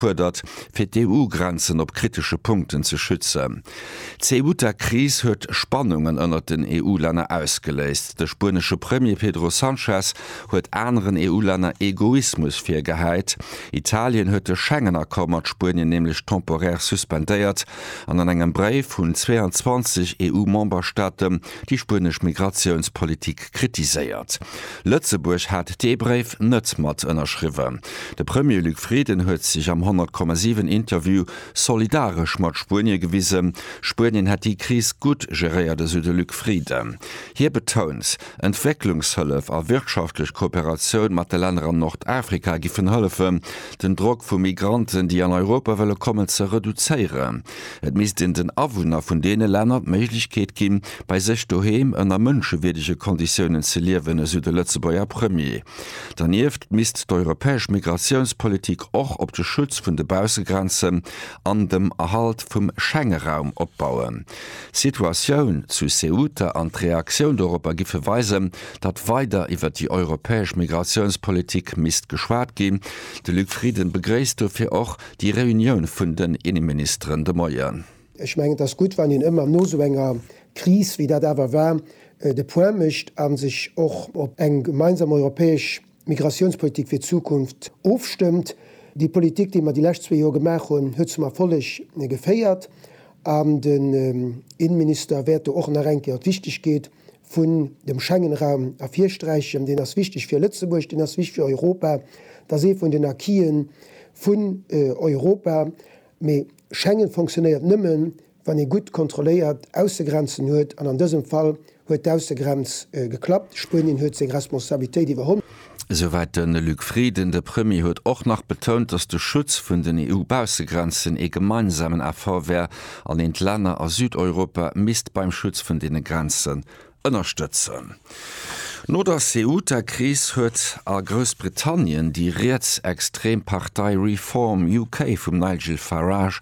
fuerdert, fir d'EU-Grenzen op kritesche Punkten ze schützen. D'Ceuta-Kris huet Spannungen ënnert den EU-Länner ausgeléist. De spuenesche Premier Pedro Sanchez huet aneren EU-Länner Egoismus virgehäit. Italien huet de Schengen-Accord mat Spuenien nämlech temporär suspendéiert an an engem Bréif un 22 EU-Memberstaate déi spuenesch Migratiounspolitik kritiséiert. Lëtzebuerg hat dee Bréif net mat ënnerschriwwen. De Premier Luc Frieden huet sech am 100,7 Interview solidaresch mat Spuenie gewisen. Spuenien hätt déi Kris gutt geréiert, esou de Luc Frieden. Hie betount, Entwécklungshëllef a wirtschaftlech Kooperatioun mat de Länner an Nordafrika giffen hëllefen, den Drock vu Migranten, déi an Europa wëlle kommen, ze reduzéieren. Et misst een den Awunner vun deene Länner d'Méiglechkeet ginn, bei sech doheem ënner mënschewierdege Konditiounen ze liewen, esou de Lëtzebuerger Premier. Dernieft misst d'europäesch Migratiounspolitik och op de Schutz vun de Baussegrenzen an dem Erhalt vum Schengeraum opbauen. D'Situatioun zu Ceuta an d'Reaktioun doropper giffe weisen, datt weider iwwer déi europäesch Migratiounspolitik misst geschwat ginn. De Luc Frieden begréisst dofir och, Déi Reunioun vun den Inneministeren de Moien. Ech mengen, et ass gutt, wann een ëmmer no esou enger Kris, wéi dat awer war, de Point mécht a sech och op eng gemeinsam europäesch Migratiounspolitik fir d'Zukunft ofstëmmt. Déi Politik, déi mer déi lescht zwee Joer gemaach hunn, huet zum Erfolleg geféiert. An den Inneminister wäert do och nach eng Kéier op d'Wichtegkeet vun dem Schengenraum ervirsträichen, deen ass wichteg fir Lëtzebuerg, deen ass wichteg fir Europa, dat ass ee vun den Acquisen vun Europa, mee Schengen fonctionnéiert nëmme wann ee gutt kontrolléiert Aussegrenzen huet an an dësem Fall huet d'Aussegrenz geklappt, Spuenien huet seng Responsabilitéit iwwerholl. Esouwäit de Luc Frieden. De Premier huet och nach betount, datt de Schutz vun den EU-Baussegrenzen ee gemeinsamen Effort wär an een d'Länner a Südeuropa misst beim Schutz vun deene Grenzen ënnerstëtzen. No der Ceuta-Kris huet a Groussbritannien déi rietsextrem Partei Reform UK vum Nigel Farage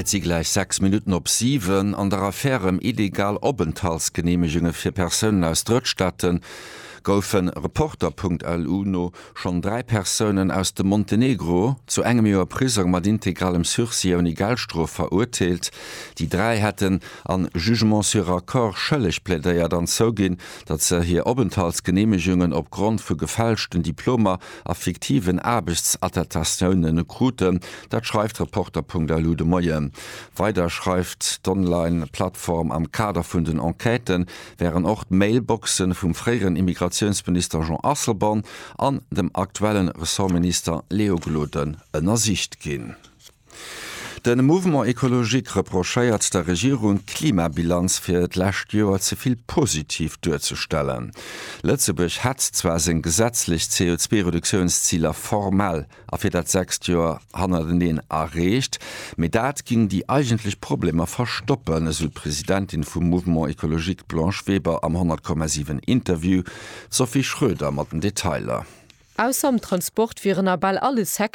Et si gläich 6 Minutten op 7. An der Affär ëm illegal Openthaltsgeneemegunge fir Persounen aus Drëttstaate goufe Reporter.lu no schonn dräi Persounen aus dem Montenegro zu engem Joer Prisong mat integralem Sursis ouni Geldstrof verurteelt. Déi dräi hätten a Jugement sur accord schëlleg plädéiert an zouginn, datt se hir Openthaltsgeneemegungen opgrond vu gefälschten Diplomer a fiktiven Aarbechtsattestatiounen e kruten. Dat schreift Reporter.lu de Moien. Weider schreift d'Online-Plattform, am Kader vun den Enquêten wären och d'Mailboxen vum fréieren Immigratiounsminister Jean Asselborn an dem aktuellen Ressortminister Léo Gloden ënnersicht ginn. De Mouvement Ecologique reprochéiert der Regierung d'Klimabilanz fir d'lescht Joer ze vill positiv duerzestellen. Lëtzebuerg hätt zwar seng gesetzlech CO2-Reduktiounsziler formell a fir dat sechst Joer hannerteneen erreecht, mee dat géing déi eigentlech Problemer verstoppen, esou d'Presidentin vum Mouvement Ecologique d'Blanche Weber am 100,7 Interview. D'Sophie Schröder mat den Detailer. Ausser am Transport wieren a bal alle Secteuren,